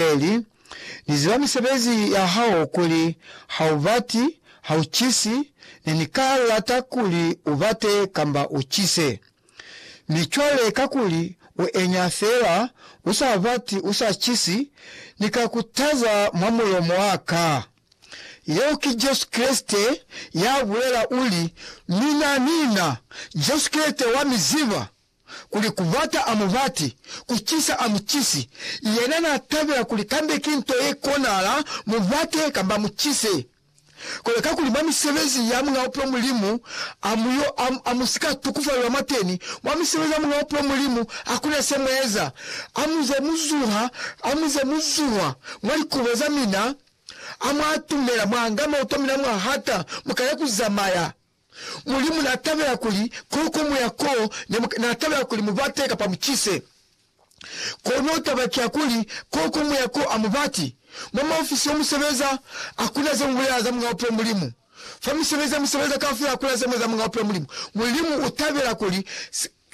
Eli, Ni ziba misebezi ya hao kuli ha u bati, ha u cisi, ne ni ka lata kuli u bate kamba u cise. Mi cwale kakuli u enya fela, u sa bati, u sa cisi, Ni ka ku taza mwa mulomo wa ka. Yeo ki Jesu Kreste ya bulela, uli, Mina, mina, Jesu Kreste wa mi ziba. kuli kubata a mubati, kucisa a mucisi, yena n'a tabela kuli kambe ki nto ye konahala mu bate kamba mu cise. Kono kakuli mwa misebezi ya Muñ'a Bupilo Mulimu a mu yo, a, a mu si ka tukufalelwa mwateni. Mwa misebezi ya Muñ'a Bupilo Mulimu ha ku na se mu eza. A mu ze mu zuha, a mu ze mu zuhwa mwa likubo za mina, a mu atumela, mwa nga maoto a mina mwa hata, mu kale ku zamaya. Mulimu n'a tabela kuli ko ko muya koo, ne n'a tabela kuli mu bate kapa mu cise. Kono taba ki ya kuli, ko ko muya koo a mu bati. Mwa maofisi yo mu sebeza, hakuna ze mu bulela za Muñ'a Bupilo Mulimu. Fa misebezi ya mu sebeza kaufela hakuna ze mu eza za Muñ'a Bupilo Mulimu. Mulimu u tabela kuli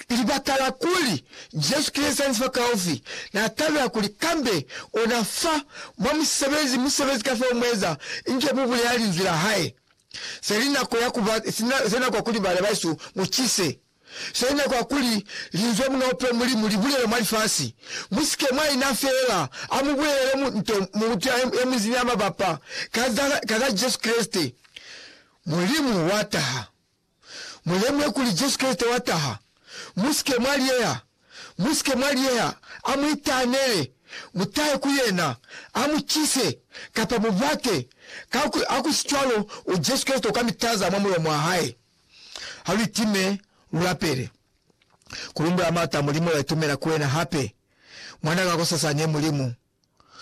Ki libaka la kuli, Jesu ki Liezaniso la kaufi. Na tabela kuli kambe ona fa mwa musebezi, musebezi kafao mueza, inge mu bulela Linzwi la Hae. Se li nako ya kuba, se nako ya kuli bana baesu mu cise. Se li nako ya kuli Linzwi la Muñ'a Bupilo Mulimu li bulelwe mwa lifasi. Mu sike mwa ina feela, a mu bulelele mu, nto, mutu ye munzi ni ya mabapa ka za, ka za Jesu Kreste, Mulimu wa taha. Mu lemuhe kuli Jesu Kreste wa taha. Mu si ke mwa liyeha. Mu si ke mwa liyeha. A mu itahanele. Mu tahe ku Yena. A mu cise, kapa mu bate. Ka ku, ha ku si cwalo, u Jesu Kreste u ka mi taza mwa mulomo wa Hae. Ha lu itime, lu lapele. Ku lumbula Mata, Mulimu, la itumela ku Wena hape. Mwan'a ka kosasani, Mulimu.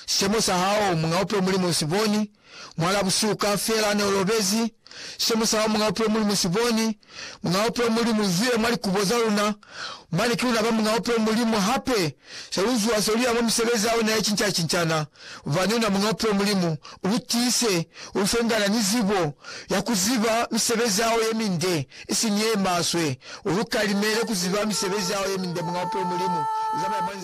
Sicemo sa hao, Muñ'a Bupilo Mulimu u si boni, Mwal'a busihu kaufela ne u lobezi, Sicemo sa hao, Muñ'a Bupilo Mulimu u si boni, Muñ'a Bupilo Mulimu u zwile mwa likubo za luna, Mane ki luna ba Muñ'a Bupilo Mulimu hape, Se lu zuha se lu ya mwa misebezi ya una ye cinca-cincana, Bubani una Muñ'a Bupilo Mulimu, u lu tiise, u lu fe ngana ni zibo ya ku ziba misebezi ya hao ye minde, isiñi ye maswe, u lu kalimele ku ziba misebezi ya hao ye minde, Muñ'a Bupilo Mulimu u zamaya mwa nzila.